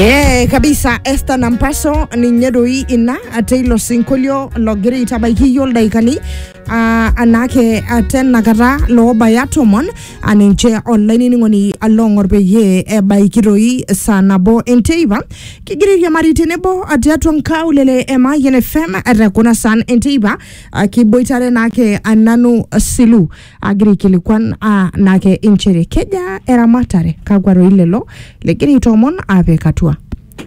Ee kabisa Esther Nampaso ninye doi ina teilo sinkolio logira aitabaiki iyiok ildaikani ah, anake ah, tenakata loobaya tomon ah, ninche olainining'oni along'or peyie ebaiki doi saa nabo enteipa kigira airiamari tenebo ah, tiatua nkaulele e Mayian FM te kuna saan enteipa ah, kiboitare naake ah, nanu silu agira aikilikuan aa nake inchere kejaa eramatare kakwa roi lelo legira aitoomon apik atua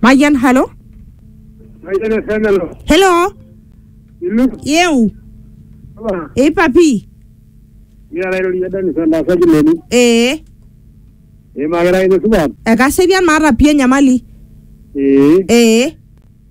mayian halo Mayiolo Fenelo. helo Ilu. yeu Apa. eipapi Mira lairorie Dennis endasaji leni. ee Imakira ine supat. ekaserian maata pii enyamali Ee. ee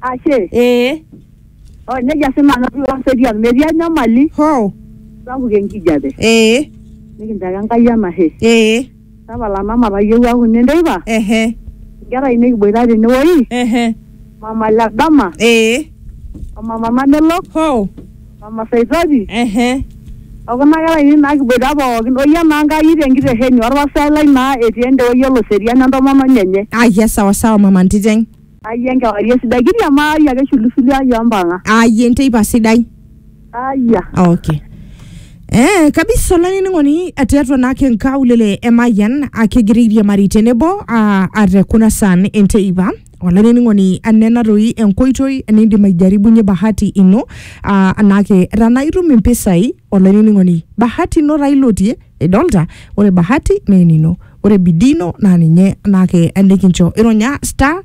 Ashe. ee Oh, nejia sii nanu atii Laserian. Metii enyamali hoo sapuk enkijape. ee Nikincho ake Enkai enashe. ee Tapala mama tayieu aaku ine nteipa. ehe Inkera ainei kiboita tenewoi. ehe Mama le dama, ee o mama Mamelok, hoo mama Saitoti, ehe o kuna kera ainei naa kiboita pookin. O yie naa Enkai tenkitesheni olpastai lai naa etii ende woi e Loserian entomononi enye. ayia sawasawa mama ntiteng Ayie enkewarie sidai kiriamari ake shulushuli ai ompang'a. ayie enteipa sidai Ayia. okay Eh, kabisa olainining'oni tiatua naake nkaulele emayian akegira airiamari tenebo ah, ate kuna saan enteipa olainining'oni anena toi enkoitoi nindim aijaribunye bahati ino ah, naake tanaa itum impisai olainining'oni bahati ino taa ilotie idolta ore bahati naa enino ore bidii ino naa ninye naake enikincho ironya star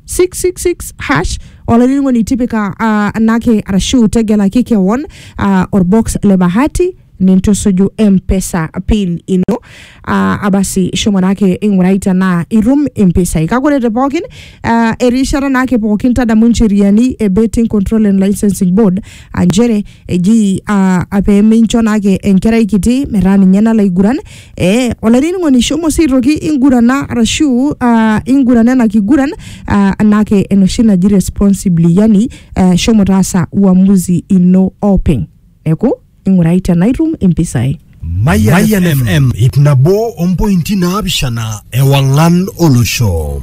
666 hash olainining'oni tipika ah, anake arashu tegelaki kewon ah, orbox le bahati nintusuju mpesa pin ino ah, abasi shomo naake ing'urai tenaa itum impisai kake ore te pookin Uh, erishata naake pookin tadamu ncheriani e betting control and licensing board aa nchere eji uh, peemincho naake enkerai kiti metaa ninye nalo aiguran eh, olainining'oni shomo sii aitoki ingurana arashu uh, ingurana ena kiguran uh, naake enoshi naji responsibly yani uh, shomo taasa uamuzi ino openy neeku ing'urai tenaitum impisai Mayan FM ip nabo ompointi naapishana ewang'an olosho.